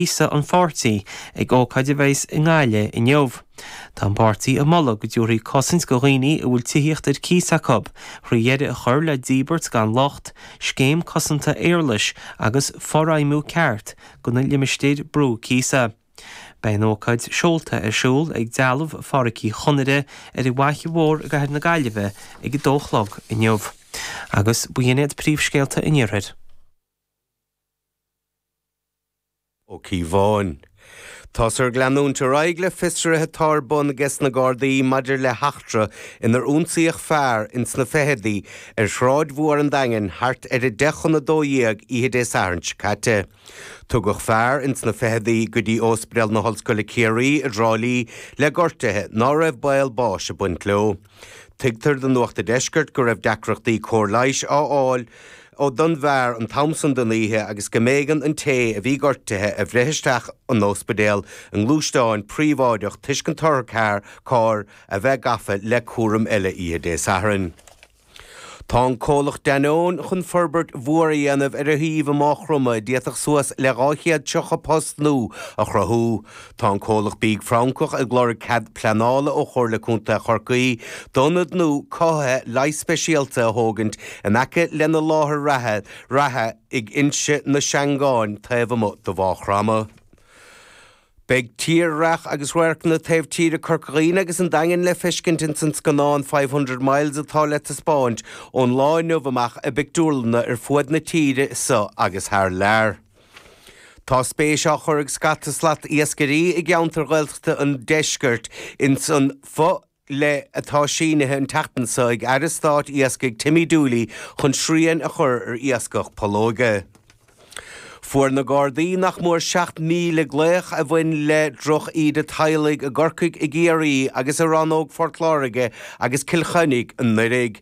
cíosa an pháirtí ag ócáid a bheas i nGaillimh inniu. Tá an páirtí ag moladh go dtabharfaí cosaint do dhaoine a bhfuil tithíocht ar cíos acu, thrí dheireadh a chur le díbirt gan locht, scéim cosanta éarlais agus forfheidhmiú ceart do na limistéir brú cíosa. Beidh an ócáid seolta ar siúl ag dealbh Phádraic Uí Chonaire ar an bhFaiche Mhór i gcathair na Gaillimhe ag a dó a chlog inniu. Agus b'in iad príomhscéalta an iarthair. Ó Cíobháin. Táthar ag leanúint ar aghaidh le fiosruithe atá ar bun aige sna Gardaí maidir le heachtra inar ionsaíodh fear ins na ficheadaí ar Shráid Mhór an Daingin thart ar 10 chun 12 oíche Dé Sathairn seo caite. Tugadh fear ins na ficheadaí go dtí Óspaidéal na hOllscoile Ciarraí i dTrá Lí le gortuithe ná raibh baol báis ag baint leo. Tuigtear do Nuacht a' Deiscirt go raibh deacrachtaí cóir leighis a fháil don bhfear an t-am san den oíche agus go mb'éigean an té a bhí gortuithe a bhreith isteach an óspidéal i ngluaisteán príobháideach toisc an t-otharcharr a bheith gafa le cúram eile oíche Dé Sathairn. Tá an comhlacht Danone chun forbairt mhór a dhéanamh ar a shuíomh i Máigh Chromtha a d'fhéadfadh suas le 230 post nua a chruthú. Tá an comhlacht bídh Francach ag lorg cead pleanála ó Chomhairle Contae Chorcaí d'ionad nua cothaithe leighis speisialta a thógaint in aice lena láthair reatha ag Inse na Seangán taobh amuigh de Mháigh Chromtha. Beidh tírdhreach agus radharcanna taobh tíre Chorca Dhuibhne agus an Daingin le feiscint ins an scannán Five Hundred Miles atá le taispeáint ón lá inniu amach i bpictiúrlanna ar fuaid na tíre seo agus thar lear. Tá spéis á chur ag scata slat iascairí i gceantar Ghaeltachta an Deiscirt ins an fo-dhlí atá sínithe an tseachtain so ag Aire Stáit Iascaigh Timmy Dooley chun srian a chur ar iascach pollóige. Fuair na Gardaí nach mór 7,000 glaoch a bhain le drochíde teaghlaigh i gCorcaigh i gCiarraí agus i Rannóg Phort Láirge agus Cill Chainnigh anuraidh.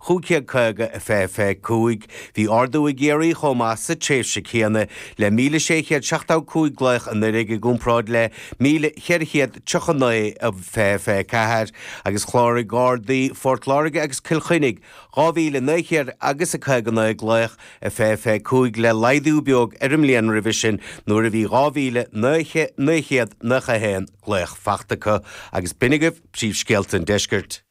1550 fiche fiche cúig. Bhí ardú i gCiarraí chomh maith sa tréimhse céanna le míle sé chéad seachtó cúig glaoch anuiridh i gcomparáid le míle cheithre chéad triocha naoi i fiche fiche ceathair, agus chláraigh Gardaí Phort Láirge agus Cill Chainnigh dhá mhíle naoi chéad agus a caoga naoi glaoch i fiche fiche cúig le laghdú beag ar an mbliain roimhe sin nuair a bhí dhá mhíle naoi chéad naocha haon glaoch fachta acu. Agus b'in agaibh príomhscéalta an Deiscirt.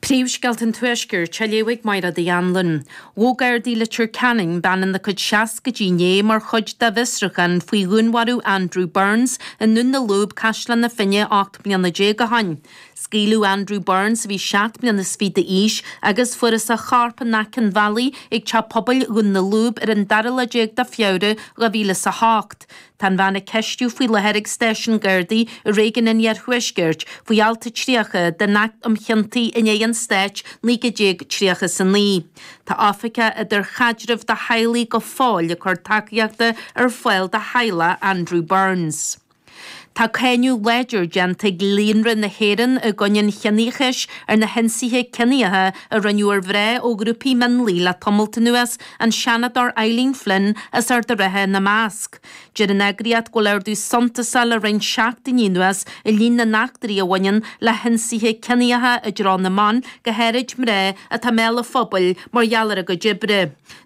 Príomhscéalta an Tuaiscirt á léamh ag Máire Uí Annluain. Ghabh Gardaí Leitir Ceanainn bean ina cuid seascaidí inné mar chuid dá bhfiosruchán faoi dhúnmharú Andrew Burns i nDún na Lúb, Caisleán na Finne ocht mbliana déag o shoin. Scaoileadh Andrew Burns a bhí seacht mbliana is fiche d'aois agus fuarthas a chorp in aice an bhealaigh ag Teach Pobail Dhún na Lúb ar an dara lá déag de Feabhra, 2008. Tá an bhean á ceistiú faoi láthair ag Stáisiún Gardaí i Réigiún an Iarthuaiscirt faoi Alt a 30 den Acht um Chiontaí in aghaidh an Stáit 1939. Tá Oifigeach idirchaidrimh do theaghlaigh go fóill ag cur tacaíochta ar fáil do theaghlach Andrew Burns. Tá cáineadh láidir déanta ag Líonra na hÉireann i gcoinne an Chiníochais ar na hionsaithe ciníocha a rinneadh ar mhná ó ghrúpaí mionlaigh le tamalt anuas, an Seanadóir Eileen Flynn as Ard a' Rátha ina measc. Deir an eagraíocht go bhfuil ardú suntasach le roinnt seachtainí anuas i líon na n-eachtraí a bhaineann le hionsaithe ciníocha i dtreo na mban, go háirid mná atá i mbéal an phobail mar gheall ar a gcuid oibre.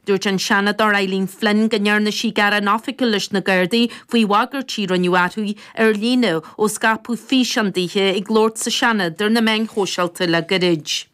Dúirt an Seanadóir Eileen Flynn go ndearna sí gearán oifigiúil leis na Gardaí faoi bhagairtí a rinneadh uirthi ar líne ó scaipeadh físeán daoithe ag labhairt sa Seanad ar na meáin shóisialta le gairid.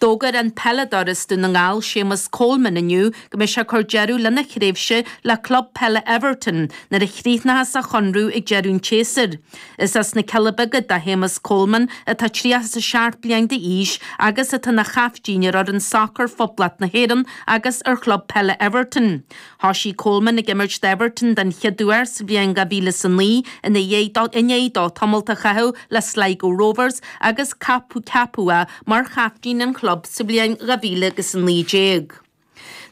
D'fhógair an peileadóir as Dún na nGall Séamus Coleman inniu go mbeidh sé ag cur deireadh lena thréimhse le club peile Everton nuair a chríochnóchas a chonradh ag deireadh an tséasúir. Is as na Cealla Beaga do Shéamus Coleman atá tríocha is a seacht bliain d'aois agus atá ina chaiftín ar fhoireann sacair Phoblacht na hÉireann agus ar chlub peile Everton. Thoisigh Coleman ag imirt d'Everton den chéad uair sa bhliain 2009 i ndiaidh dó tamalt a chaitheamh le Sligo Rovers agus ceapadh é mar chaiftín an chlub sa bhliain 2019.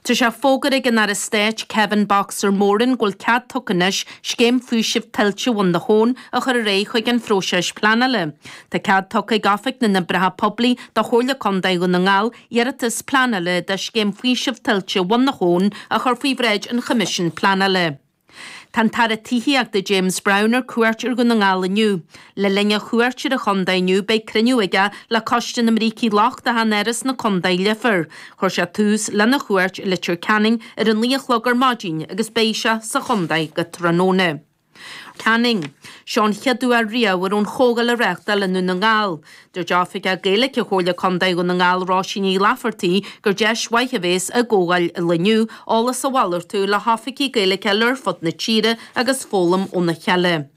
Tá sé fógartha ag an Aire Stáit Kevin 'Boxer' Moran go bhfuil cead tugtha anois scéim faoisimh tuilte Bhun na hAbhann a chur ar aghaidh chuig an phróiseas pleanála. Tá cead tugtha ag Oifig na nOibreacha Poiblí do Chomhairle Contae Dhún na nGall Iarratas Pleanála do Scéim Faoisimh Tuilte Bhun na hAbhann a chur faoi bhráid an Choimisiúin Pleanála. Tá an tAire Tithíochta James Browne ar cuairt ar Dhún na nGall inniu. Le linn a chuairt ar an chontae inniu beidh cruinniú aige le Coiste na mBrící Lochtacha in Áras na Contae, Leifear. Chuir sé tús lena chuairt i Leitir Ceanainn ar a naoi a chlog ar maidin agus beidh sé sa chontae go tráthnóna. Ceanainn, seo an chéad uair riamh a raibh an chomhdháil á reáchtáil i nDún na nGall. Dúirt Oifigeach Gaeilge Chomhairle Contae Dhún na nGall Róise Ní Laifeartaigh gur deis mhaith a bhéas i gcomhdháil an lae inniu eolas a mhalartú le hoifigigh Gaeilge ar fud na tíre agus foghlaim óna chéile.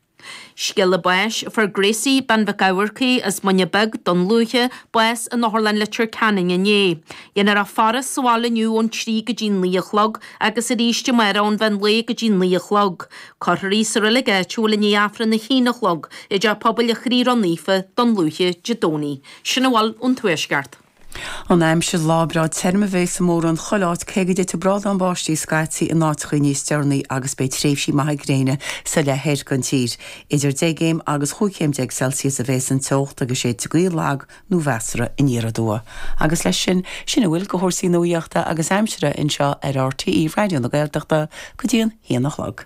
Scéala báis Fuair Gracie Bean Mhic Eamharcaigh as Muine Beag, Dún Lúiche, bás in Otharlann Leitir Ceanainn inné. Déanfar í a fhaire sa bhaile inniu ón trí go dtí'n naoi a chlog agus arís amárach ón mheán lae go dtí'n naoi a chlog. Cuirfear í sa reilig áitiúil i ndiaidh Aifreann a haon a chlog i dTeach Pobail a' Chroí Ró Naofa Dún Lúiche Dé Domhnaigh. Sin a bhfuil ón Tuaisceart. An aimsir, Lá breá tirim a bheas i mórán chuile áit, cé go dtitfidh brádán báistí scaití in áiteachaí níos deireanaí agus beidh tréimhsí maithe gréine sa leith thoir den tír. Idir deich gcéim agus chúig chéim déag Celsius a bheas an teocht agus séidfidh gaoth lag nó measartha aniar aduaidh agus leis sin, sin a bhfuil de chúrsaí nuaíochta agus aimsire anseo ar RTÉ Raidió na Gaeltachta go dtí an haon a chlog.